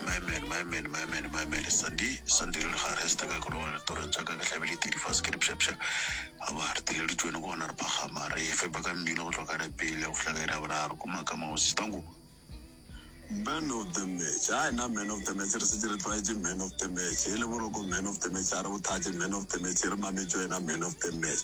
My man, my man, my man, my man Sandi, Sandi re le ga re staka ke loga ditorong tša ka ke hlabile tedi fase ke dipšhapšha aba re tile di tšwene gona re phagama re efe ba ka mmino go tloka re pele go hlaga ira boraro ko makama go sistango Man of the match a na man of the match re setse re tlwaetse man of the match e le boroko man of the match a re bothatše man of the match re mametšo ena man of the match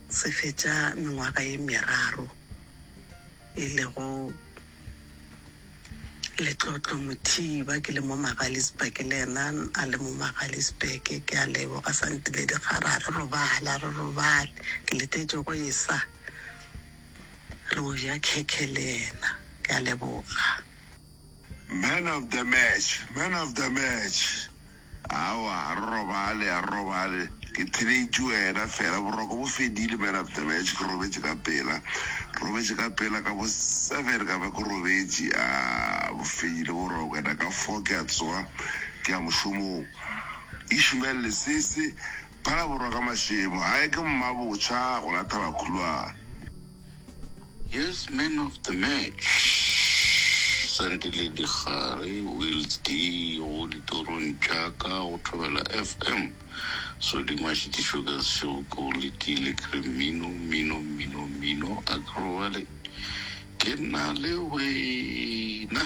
Se fetša mengwaga ye meraro e lego letlotlo, Mothiba ke le mo Magaliesburg le yena a le mo Magaliesburg. Ke a leboga sa ntile dikgara, a re robale, a re robale. Ke letetše go e sa re o ja khekhe le yena. Ke a leboga. Man of the match, man of the match. Aowa, a re robale, a re robale. Ke theletše wena fela. Boroko bo fedile, man of the match. Ke robetše ka pela. Robetše ka pela ka bo seven ka ba ke robetše. Aah, bo fedile boroko. And-a ka four ke a tsoga ke ya mošomong. Ishmael Lesese, Phalaborwa ka Mashemo. Hai, ke mmabotjha, gona Thabakhuloa. Yes, man of the match, Sandile Dikgare, Wills D, go ditorong tša ka go Thobela FM. So di mašitišo ka sešego ke go letile ke re mmino, mmino, mmino, mmino, a ke robale ke na le wena.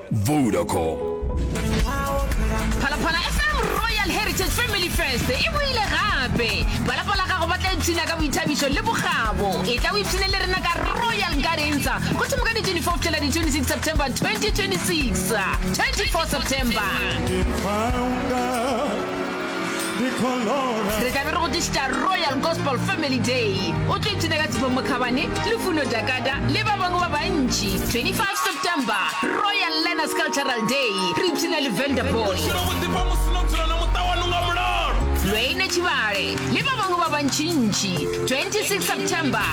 Vodacom. Phalaphala FM Royal Heritage Family Fest e boile gape. Ba lapa la gago ba tla ipshina ka boithabišo le bokgabo. E tla o ipshine le rena ka Royal Nkarensa go thoma ka di 24 fihla di 26 September 2026. 24 September. re tlabe re go tlišitša royal gospel family day o tlo ipshina ka tshifo mokhabane le funo dakada le ba bangwe ba bantši 25 september royal learners cultural day re ipshina le vanderball lweine tšhibale le ba bangwe ba bantšintši 26 september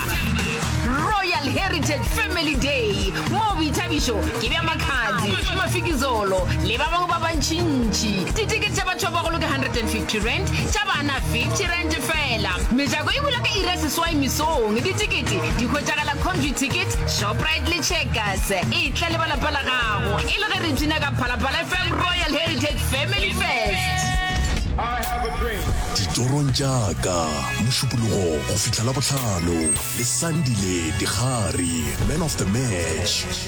royal heritage family day moo boithabišo ke bja makhadzi mafikizolo le ba bangwe ba bantšintši Ditikete tša batho ba bagolo ke 150 rand, tša bana 50 rand fela. Mejako e bula ka iri ya seswai mesong. Ditikete di hwetšagala Conview Ticket, Shoprite le Checkers. E tla le ba lapa la gago e le ge re bina ka Phalaphala FM Royal Heritage Family Fest. Ditorong tša ka, Mošupologo go fihla Labohlano, le Sandile Digari, Man of the Match.